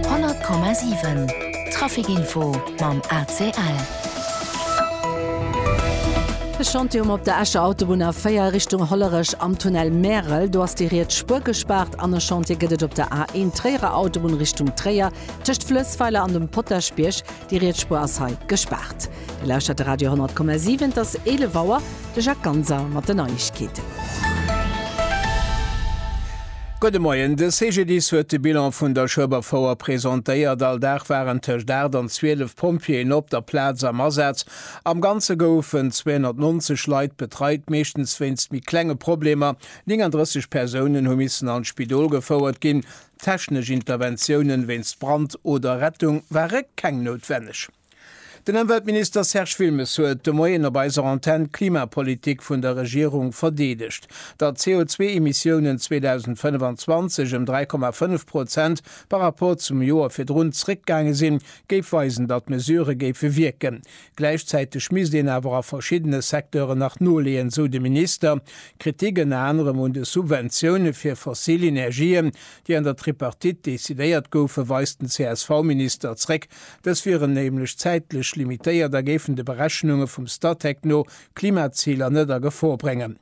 100,7 Trafic Info mam ACL. E Chantier um op der Escher Autobunn A4 Richtung Hollerech am Tunnel Märel. Do ass déi riets Spuer gespaart an e Chantier gëtt et op der A1 Tréierer Autobunn Richtung Tréier tëscht Flëssweiler an dem Potaschbierg. Déi riets Spuer ass hei gespaart. Dir lauschtert de Radio 10,7. Et ass 11 Auer. De Jacques Ganser mat den Neiegkeeten. Gudde Moien. De CGDIS huet de Bilan vun der Schueberfouer presentéiert. All Dag waren tëscht 8 an 12 Pompjeeën op der Plaz am Asaz. Am Ganze goufen 290 Leit betreit, meeschtens wéinst méi klenge Problemer. 39 Persounen hu missen an d'Spidol gefouert ginn. Technesch Interventiounen wéinst Brand oder Rettung ware keng noutwenneg. Den Ëmweltminister Serge Wilmes huet de Moien op eiser Antenn d'Klimapolitik vun der Regierung verdeedegt, datt d'CO2-Emissiounen 2025 ëm 3,5 Prozent par rapport zum Joer virdrun zréckgaange sinn, géif weisen, datt d'Mesurë géife wierken. Gläichzäiteg misst een awer a verschiddene Secteuren nach noleeën, sou de Minister. Kritik ënner anerem un de Subventioune fir fossil Energien, déi an der Tripartite decidéiert goufen, weist den CSV-Minister zréck. Dës wieren nämlech zäitlech limitéiert a géifen de Berechnunge vum Statec no d'Klimaziler net a Gefor bréngen.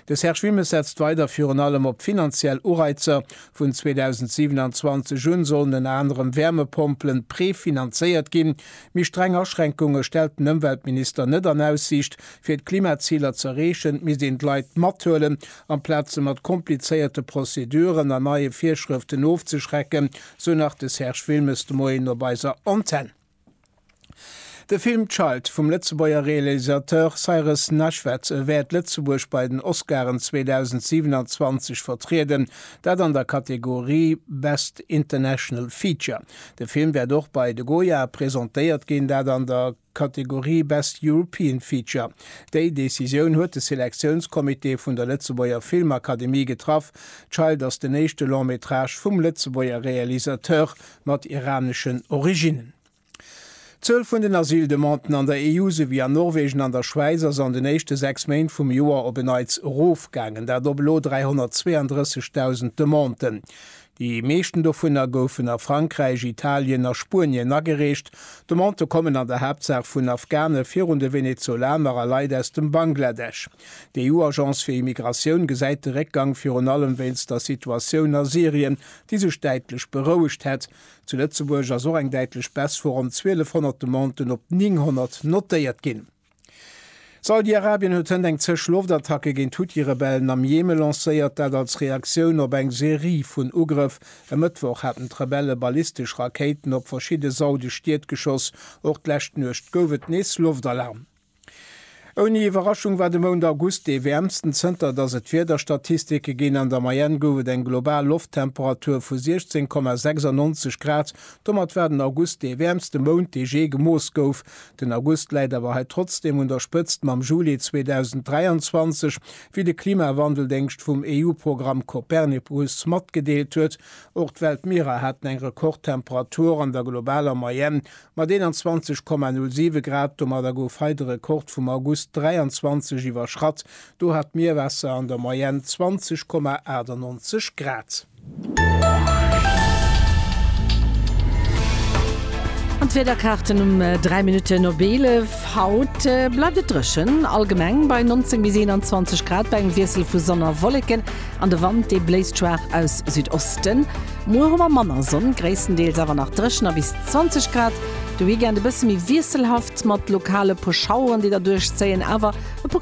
De Serge Wilmes setzt weider virun allem op finanziell Ureizer. Vun 2027 un sollen ënner anerem Wärmepompelen prefinanzéiert ginn, Méi streng Aschränkunge stellt den Ëmweltminister net an Aussiicht. Fir d'Klimaziler ze erreechen, misst een d'Leit mathuelen, amplaz se mat komplizéierte Prozeduren an neie Virschrëften ofzeschrecken, sou nach de Serge Wilmes de Moien op eiser Antenn. De Film Child vum Lëtzebuerger Realisateur Cyrus Nashved wäert Lëtzebuerg bei den Oscaren 2027 vertrieden, dat an der Kategorie Best International Feature. De Film wäert och bei de Goya presentéiert ginn, dat an der Kategorie Best European Feature. Déi Decisioun huet de Selektiounscomité vun der Lëtzebuerger Filmakademie getraff. Child ass den éischte Long-métrage vum Lëtzebuerger Realisateur mat iraneschen Originnen. D'Zuel vun den Asyldemanden an der EU, souwéi an Norwegen an der Schwäiz, ass an den éischte sechs Méint vum Joer op en Neits erofgaangen, dat op elo 332.000 Demanden. Déi meeschten dovunner goufen a Frankräich, Italien a Spuenien agereecht. D'Demandë kommen an der Haaptsaach vun Afghane virun de Venezolaner a Leit aus dem Bangladesch. D'EU-Agence fir Immigratioun gesäit de Réckgang virun allem wéinst der Situatioun a Syrien, déi sech däitlech berouegt hätt. Zu Lëtzebuerg ass och eng däitlech Baisse vu ronn 1.200 Demanden op 900 notéiert ginn. Saudi-Arabien huet hënt eng Zësch Loftattacke géint Huthi-Rebellen am Jemen lancéiert, dat als Reaktioun op eng Serie vun Ugrëff. E Mëttwoch haten d'Rebelle ballistesch Rakéiten op verschidde saudesch Stied geschoss. Och d'lescht Nuecht gouf et nees Loftalarm. Ouni Iwwerraschung war de Mount August dee wäermsten, zënter datt et Wiederstatistike ginn. An der Moyenne gouf et eng global Lofttemperatur vu 16,96 Grad. Domat war den August dee wäermste Mount, dee jee gemooss gouf. Den August läit awer hei trotzdeem un der Spëtzt mam Juli 2023, wéi de Klimawandeldéngscht vum EU-Programm Copernicus matgedeelt huet. Och d'Weltmierer haten eng Rekordtemperatur an der globaler Moyenne mat 21,07 Grad. Domadder gouf hei de Rekord vum August 23 iwwerschratt, do hat d'Mierwaasser an der Moyenne 20,98 Grad. An d'Wiederkaarten um 3 Minutten op 11. Haut bleift et dréchen, allgemeng bei 19 bis 21 Grad bei engem Wiessel vu Sonn a Wolleken an de Wand dee bléist schwaach aus Südosten. Muer hu mer manner Sonn, gréisstendeels awer nach dréchen a bis 20 Grad. De Weekend e bësse méi wiesselhaft mat lokale puer Schaueren déi derduerch zéien, awer e puer.